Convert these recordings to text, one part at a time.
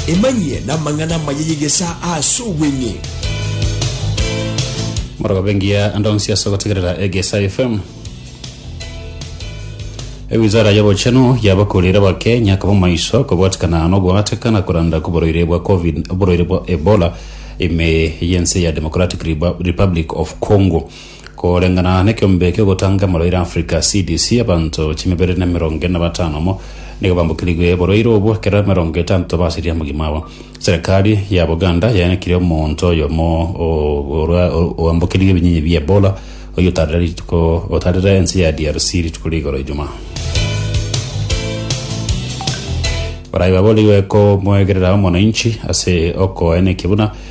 Emanyie namang'ana amaya y'egesaa ase obweng'e. Morogobe engiya ande onsi ase ogotegerera Egesa FM. Ewizara y'obochenu yabakurire Abakenya koba maiso kobwatikana n'ogoateka na koranda kw'oborwaire bwa covid oborwaire bwa Ebola ime y'ense ya Democratic Rebu- Republic of Congo. Koreng'ana nekiombe ki'ogotanga emoroira Africa, CDC, abanto chimibere na emerongo ere na batano amo nigo bambokirigwe oborwaire obwo, ekero emerongo etanto basirie omogima abo. Serekari ya Buganda yaenekirie omonto oyomo orwa- oambokirigwe ebinyinyi bia Ebola oyio otarire rituko otarire ense ya DRC rituko ria igoro Ijumaa. Baria baboorigwe komoegerera omonainchi ase okoenekia buna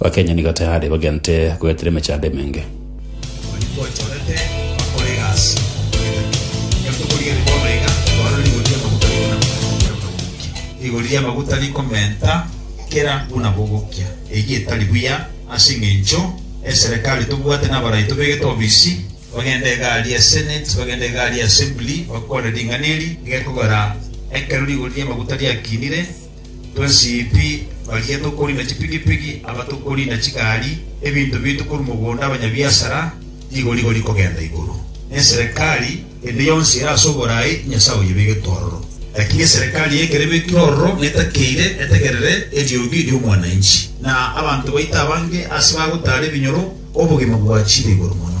Bakenya nigo tayari bagente goetera emechando emenge. Onye gwanchorete bakore egasi okoegena, tiga tokorigerie bono iga, tware rigori ri'amaguta rikona buna bogokia. Rigori ri'amaguta rikomenta kera buna bogokia, eyio etari buya, ase engencho eserekari tobwate nabarai tobegete obisi, bagende egari ya Senate, bagende egari ya Assembly, bakore ring'ana eri rigekogera ekero rigori ri'amaguta riakinire. Twasipi baria tokoriina chipigipigi, aba tokoriina chigari, ebinto biaito korwa mogondo, abanyabiasara, rigori-gori kogenda igoro, na eserekari ende yonsi ere ase oboraai, Nyasae oyebegete ororo. Lakini eserekari y'ekero ebekire ororo na etakeire, etegerere eriogi ri'omwananchi, na abanto baito abange aase bagotaara ebinyoro, obogima bwachire igoro mono.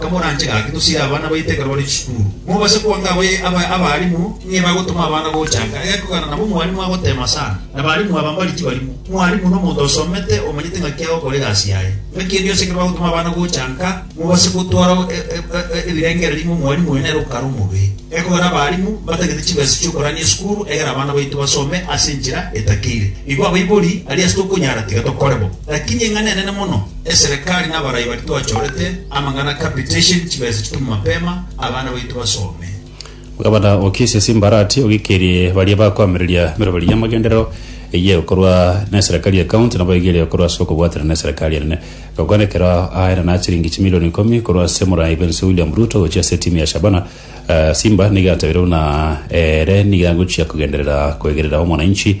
Timoranche gaki tosire abana baito ekero bare chisukuru. Mobase kwanka abalimu ng'ai bagotoma abana gochanka egekogera nabo mwalimu agoteema sana. Abalimu aba mbari tibarimo. Mwalimu nomonto osomete omanyete ng'aki agokora egasi yaye. Ng'aki engiya yonsi ekero bagotoma abana gochanka, mobase gotwara ebirengererio ng'a omwalimu oyo nere okare omobe. Egekogera abalimu mbatagete chibesa chi'okorania esukuru egere abana baito basome ase enchera etakeire. Igo abaibori aria ase tokonyara tiga tokore bo. Lakini eng'ana enene mono. Eserekari nabarai baria twachorete amang'ana capitation chibesa chitume mapema abana baito basome. Gavana okisie Simbarati ogikirie baria bakoamereria meroberi y'amagenderero eyio korwa neserikari ye county nabo egerie korwa ase okobwatana neserikari enene gokwana ekero aare na chiringi chimilioni ikomi korwa ase morai bwense William Ruto gochia ase etimu ya Shabana Simba nigo atabire buna ere nigo agochia kogenderera koegerera omonainchi